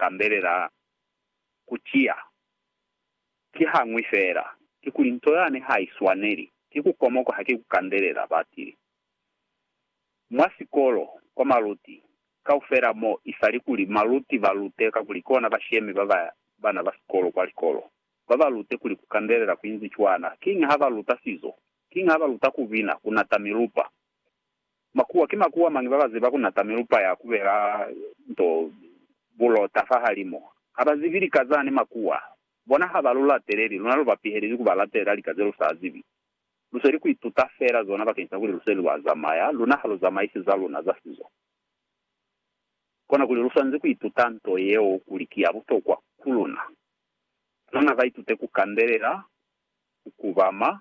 tambelela ku ciya ki hañwi feela, kikuli nto yani ha i swaneli ki ku komoka haki ku kandelela batili. Mwa sikolo, kwa maluti kaufela mo i sa li kuli maluti ba lute kakuli kona ba shemi ba ba bana ba sikolo kwa likolo, ba ba lute kuli ku kandelela ku inzi cwana, kiñi ha ba luta sizo, kiñi ha ba luta ku bina, ku nata milupa, Makuwa, Ki makuwa mañi babaziba kunata milupa ya kubela nto bulota fahalimu? Habazibi lika zani makuwa. Bona haba lu lateleli, luna luba pihelezi kuba latelela lika ze lu sa zibi. Lusweli ku ituta feela zona bakeni sa kuli lusweli lwa zamaya, luna ha lu zamaisi za luna za sizo. Kona kuli lu swanezi ku ituta nto yeo kuli ki ya butokwa ku luna. Luna ba itute ku kandelela, ku kubama,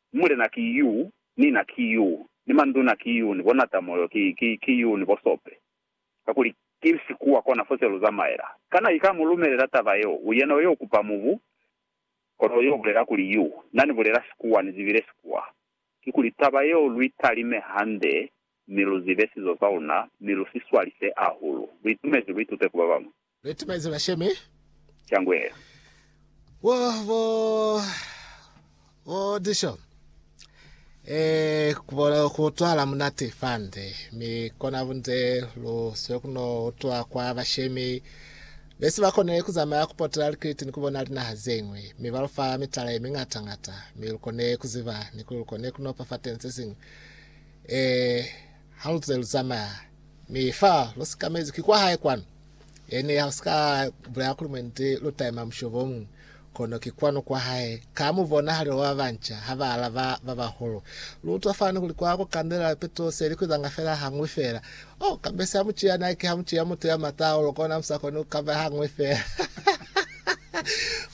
Mulena ki yu, ni na ki yu, ni manduna ki yu, ni bonatamoyo ki, ki, ki yu, ni bosope. Kakuli ki sikuwa kona fo se lu zamaela. Kana i ka mu lumelela taba yeo? U yena yo kupa mubu, kono yo bulela kuli yu. Na ni bulela sikuwa, ni zibile sikuwa. Kikuli taba yeo lu i talime hande, mi lu zibe sizo sa luna, mi lu si swalise ahulu. Lu itumezi, lu itute ku ba bamwi. Leti maize ba sheme. Shangwela. Wo, bo, bo disho. E, kubola kutwala munate fande. Mi kona bunze lu swe kuno utwa kwa bashemi. Besi ba kone kuzamaya kupotela likiliti ni kubona linaha zeñwi. Mi ba lufa mitala ye mingata ngata. Mi lukone kuziba ni kuli lukone kunopa fa teng sesiñwi. E, Haluze luzamaya, mi fa lusikamezi ki kwahae kwanu, yani halusika bulela kuli mwendi lutaima mushobongi, kono ki kwanu kwahae, ka mubonahalelo wa babanca haba alaba babahulu. Luutwa fani kuli kwa kukandelela pitu selikwizanga fela hañwi fela. Oh, kabesi hamuciya Nike, hamuciya mutu ya mata hahulu, kona musakoni kukaba hañwi fela.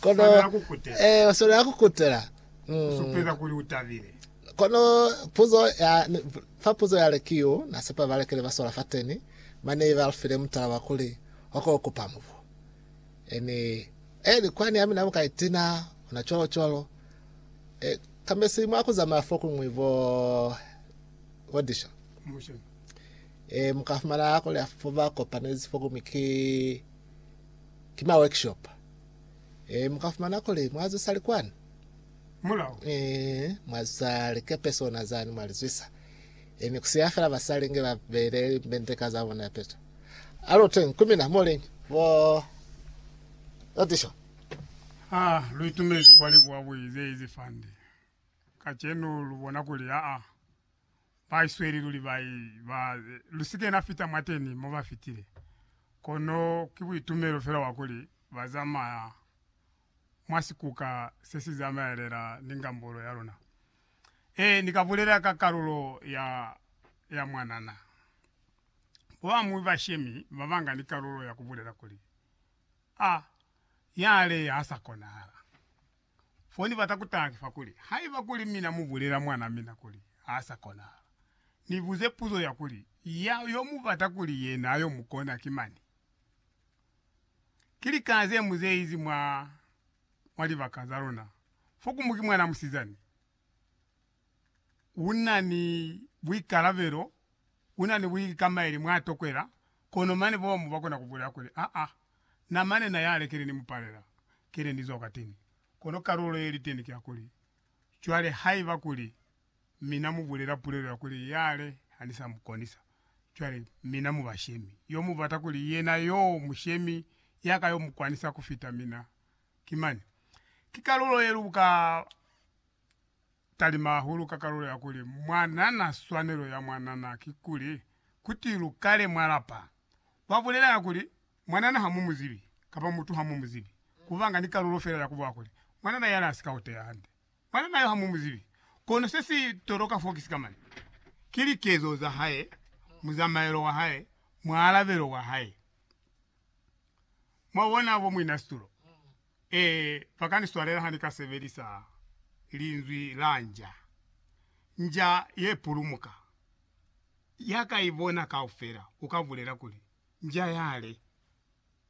Kono, Swanela kukutela. eh, uswanela kukutela. Mm. Supeza kuli utabile. Kono puzo ya fa puzo yale ki yo na sepa ba lekele ba sola fateni, mane ba lufile mutala wa kuli, Oko ku pa mubu. Eni, eli kwani ya mina mu ka itina, ona cwalo cwalo. E, kambe si mwa ku zamaya fokuñwi bo, bo disho. E, mu ka fumana kuli ya fo ba kopanezi fokuñwi ki, ki ma workshop. E, mu ka fumana kuli mwa zwisali kwani. mulao. Mi mwa za likepe sona zani mwa li zwisa, mi ku siya fela basali nge ba beile limbendeka za bona peto. Alo teñi ku mina, moleñi, bo Otisho. Ha lu itumezi kwa libuwa buli ze izi fande kacenu, lu bona kuli aa, ba isweli luli ba i ba. Lu si kena fita mwateni mo ba fitile, kono ki buitumelo fela bwa kuli ba zamaya mwa sikuka se si zamaelela ni ngambulo ya luna. Ee, ni ka bulela ka kalulo ya, ya mwanana. Bo amuhi ba shemi ba banga ni kalulo ya ku bulela kuli, A, yale ha sa konahala. Fo ni bata ku taha ki fa kuli, haiba kuli mina mu bulela mwana mina kuli ha sa konahala, ni buze puzo ya kuli, Ya yo mu bata kuli yena yo mu kona ki mani? ki lika ze mu zeizi mwa, mwa libaka za luna. Fokumu ki mwana musizani. U na ni buikalabelo, u na ni buikamaeli mwa tokwela, kono mane bomu ba kona ku bulela kuli, Aa, na mane na yale kile ni mu palela, kile ni zwa kwateni. Kono kalulo ye liteni ki ya kuli, Cwale haiba kuli, Mi Na mu bulela pulelo ya kuli, Yale, ha ni sa mu konisa. Cwale, mina mu bashemi. Yo mu bata kuli yena yoo mushemi ya ka yo mu kwanisa ku fita mina. Ki mani. Ki kalulo ye lu ka talima hahulu ka kalulo ya kuli, Mwa nana swanelo ya mwa nana, kikuli, kuti lu kale mwa lapa. Lwa bulelanga kuli, Mwa nana ha mu mu zibi, kapa mutu ha mu mu zibi. Ku banga ni kalulo fela ya ku buha kuli, Mwa nana yale ha si ka uteya hande. Mwana nayo ha mu mu zibi. Kono se si toloka fo ki sikamana. Ki likezo za hae, muzamaelo wa hae, mualabelo wa hae. Mwa bona, bo muinasitulo? Ee, ba ka ni swalela ha ni ka sebelisa linzwi la nja. Nja ye pulumuka. Ya ka i bona kaufela, u ka bulela kuli, Nja yale.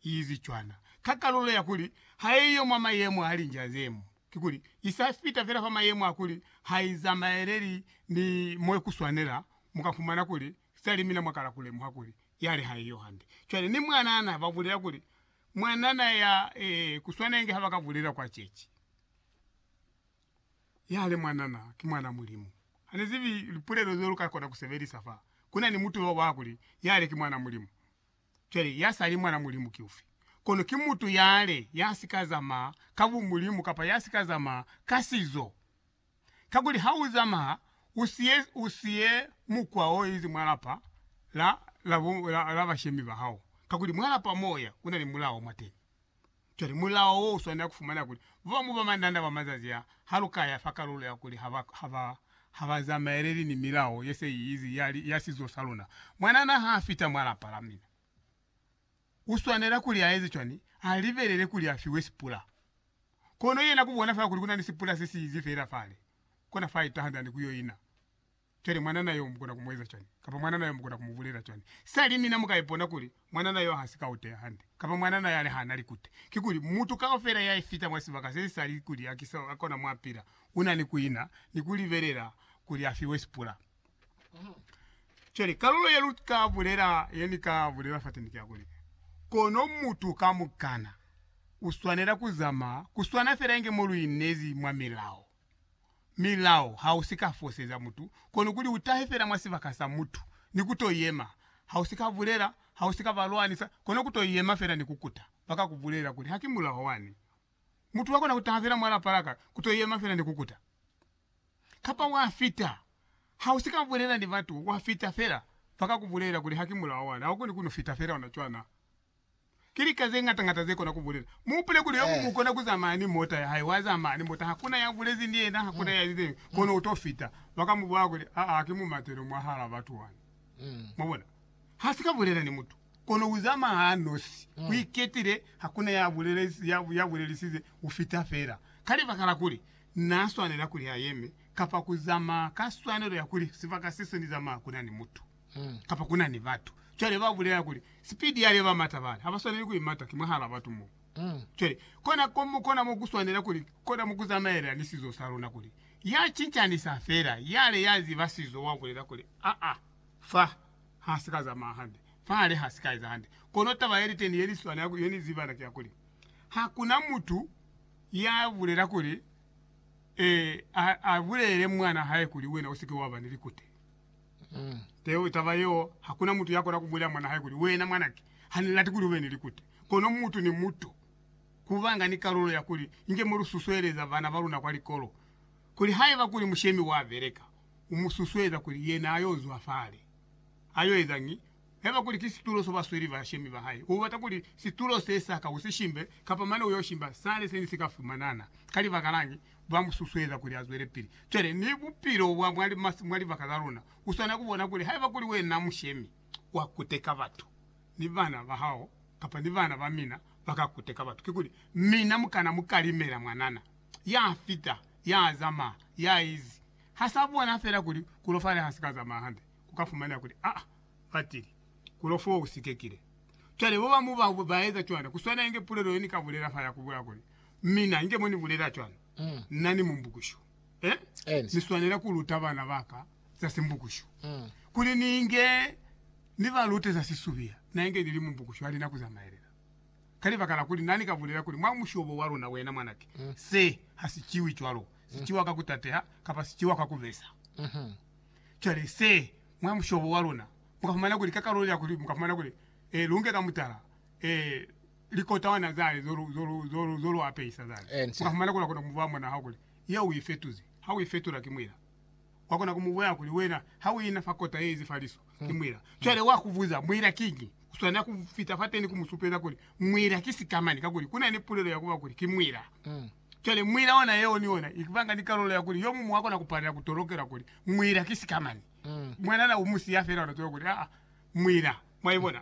iizi cwana ka kalulo ya kuli haiyo mwa mayemo a linja ze mo, kikuli i sa fita fela fa mayemo a kuli ha i zamaeleli ni mwe ku swanela, mu ka fumana kuli sali mina mwa kala ku lemuha kuli yale haiyo hande. Cwale ni mwanana ba bulela kuli mwanana ya, ee, ku swana inge ha ba ka bulela kwa ceci, Yale mwanana ki mwana Mulimu. Ha ni zibi lipulelo zeo lu ka kona ku sebelisa fa ku na ni mutuba wa kuli yale ki mwana Mulimu. Cwale, ya sa li mwan'a Mulimu ki ufi? Kono ki mutu yale ya si ka zamaa ka bumulimu kapa ya si ka zamaa ka sizo. Kakuli ha u zamaa u si ye, u si ye mukwa o inzi mwa lapa la, la, la, la bashemi ba hao, kakuli mwa lapa mo u ya, ku na ni mulao mwateni. Cwale mulao wo uswanela kufumana kuli babamu ba mandanda ba mazazi a ha lu ka ya fa kalulo ya kuli ha ba ha ba zamaeleli ni milao ye se i izi ya, ya sizo sa luna. Mwanana ha a fita mwa lapa la mina, u swanela kuli a eze cwani? A libelele kuli a fiwe sipula. Kono yena ku bona fela kuli ku na ni sipula se si izi fela fale, kona fa a itaha nzani ku yo ina. Cwale mwanana yo mukona ku mu eza cwani? Kapa mwanana yo mukona ku mu bulela cwani? Sali mina mu ka ipona kuli mwanana yo ha si ka uteya hande, kapa mwanana yale ha na likute. Kikuli, mutu kaufela ya ifita mwa sibaka se sa li kuli a ki sa kona mwa pila, u na ni ku ina ni ku libelela kuli a fiwe sipula. Cwale, kalulo ye lu ka bulela, ye ni ka bulela fateni ki ya kuli, Kono mutu kamukana u swanela ku zamaya ku swana fela inge mo lu inezi mwa milao. milao ha u si ka foseza mutu, kono kuli u tahe fela mwa sibaka sa mutu ni ku to yema. Ha u si ka bulela, ha u si ka ba lwanisa, kono ku to yema fela ni ku kuta. Ba ka ku bulela kuli, Haki mulao wani. Mutu wa kona ku taha fela mwa lapa la ka, ku to yema fela ni ku kuta. Kapa wa fita. Ha u si ka bulela ni batu, wa fita fela. Ba ka ku bulela kuli, Haki mulao wani. Ha u koni ku no fita fela ona cwana. Ki lika ze ñata ñata ze kona ku bulela. Mu hupule kuli Yobu mu kona ku zamaya ni mota ya hae, wa zamaya ni mota, hakuna ya bulezi ni yena, hakuna ya lizeñwi, kono u to fita. Ba ka mu bwaya kuli, Aa, ki mumatelo mwahala batu wani. Mwabona? Ha si ka bulela ni mutu, kono u zamaya a nosi, u iketile, hakuna ya bulelezi, ya bulelisize, u fita fela. Ka libaka la kuli Na swanela kuli a yeme, kapa ku zamaya ka swanelo ya kuli sibaka se se ni zamaya kuna ni mutu. Mm. Kapa ku na ni batu cwale ba bulela kuli, Sipidi ya leba mata bana, ha ba swaneli ku imata, ki mwahal'a batu mo. Mm. Cwale, kona ko, kona mo ku swanela kuli, kona mo ku zamaela ni sizo sa luna kuli, ya cincanisa fela, yale ya ziba sizo wa bulela kuli, Aa, fa ha si ka zamaya hande, fa hale ha si ka eza hande. Kono taba ye li teni ye ni swana, ye ni ziba na, ki ya kuli, Ha ku na mutu ya bulela kuli, eh, a, a bulelele mwan'a hae kuli, Wena u si ke wa ba ni likute. Teo taba yeo, hakuna mutu yakona kubulela mwana hae kuli, Wena mwanake, hanilati kuli ube ni likute. Kono mutu ni mutu kubanga ni kalulo ya kuli inge molususueleza bana baluna kwa likolo, kuli haiba kuli mushemi wabeleka, umususueza kuli yena ayo zwa fale. Ayo ezañi? Haiba kuli ki situlo so basweli ba shemi ba hae, u bata kuli situlo se sa ka u si shimbe, kapa mane u yo shimba sale se ne si ka fumanana. Ka libaka lañi? Ba mu susueza kuli a zwele pili. Cwale, ni bupilo bwa mwa libaka la luna, u swana ku bona kuli haiba kuli wena mushemi wa kuteka batu, ni bana ba hao kapa ni bana ba mina ba ka kuteka batu. Kikuli mina mu kana mu kalimela mwanana ya fita, ya zamaya, ya izi. Ha sa bona fela kuli ku lofale ha si ka zamaya hande. ku ka fumana kuli, Aa, batili, ku lo foo u sikekile. Cwale babamu ba ba eza cwana. Ku swana inge pulelo ye ni ka bulela fa ya ku bula kuli, Mina, inge mo ni bulela cwalo, na ni mumbukushu. Eh? Ni swanela ku luta bana ba ka za simbukushu. Kuli ni inge ni ba lute za sisubiya, na inge ni li mumbukushu, hali na ku zamaelela. Ka libaka la kuli na ni ka bulela kuli, Mwa mushobo wa luna, wena mwanake, se ha si ciwi cwalo. Si ciwa ka ku tateha, kapa si ciwa ka ku besa. Cwale se, mwa mushobo wa luna, mu ka fumana kuli, ka kalulo ya kuli, mu ka fumana kuli, e, lu nge ka mutala, e, likotawana zani zo lu, zo lu, zo lu, zo lu apehisa zani. Mu ka fumana kuli wa kona ku mu ba mwana hao kuli, Yeo u i fetuzi. Ha u i fetula, ki mwila. Wa kona ku mu bulela kuli, Wena, ha u ina fa kota ye ize fa liso, ki mwila. Cwale wa ku buza, Mwila kiñi? U swanela ku fita fateni ku mu supeza kuli, Mwila ki sikamani, kakuli ku na ni pulelo ya ku ba kuli, ki mwila. Cwale, muila ona yeo ni ona i banga ni kalulo ya kuli yo muñwi wa kona ku palela ku tolokela kuli muila ki sikamani. Mwanana u mu siya fela, ona tolokela kuli, Aa, muila. Mwa ibona?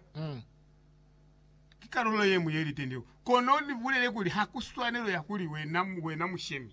Ki kalulo ye ñwi ye li tende. Kono ni bulele kuli ha ku swanelo ya kuli wena, wena mu shemi.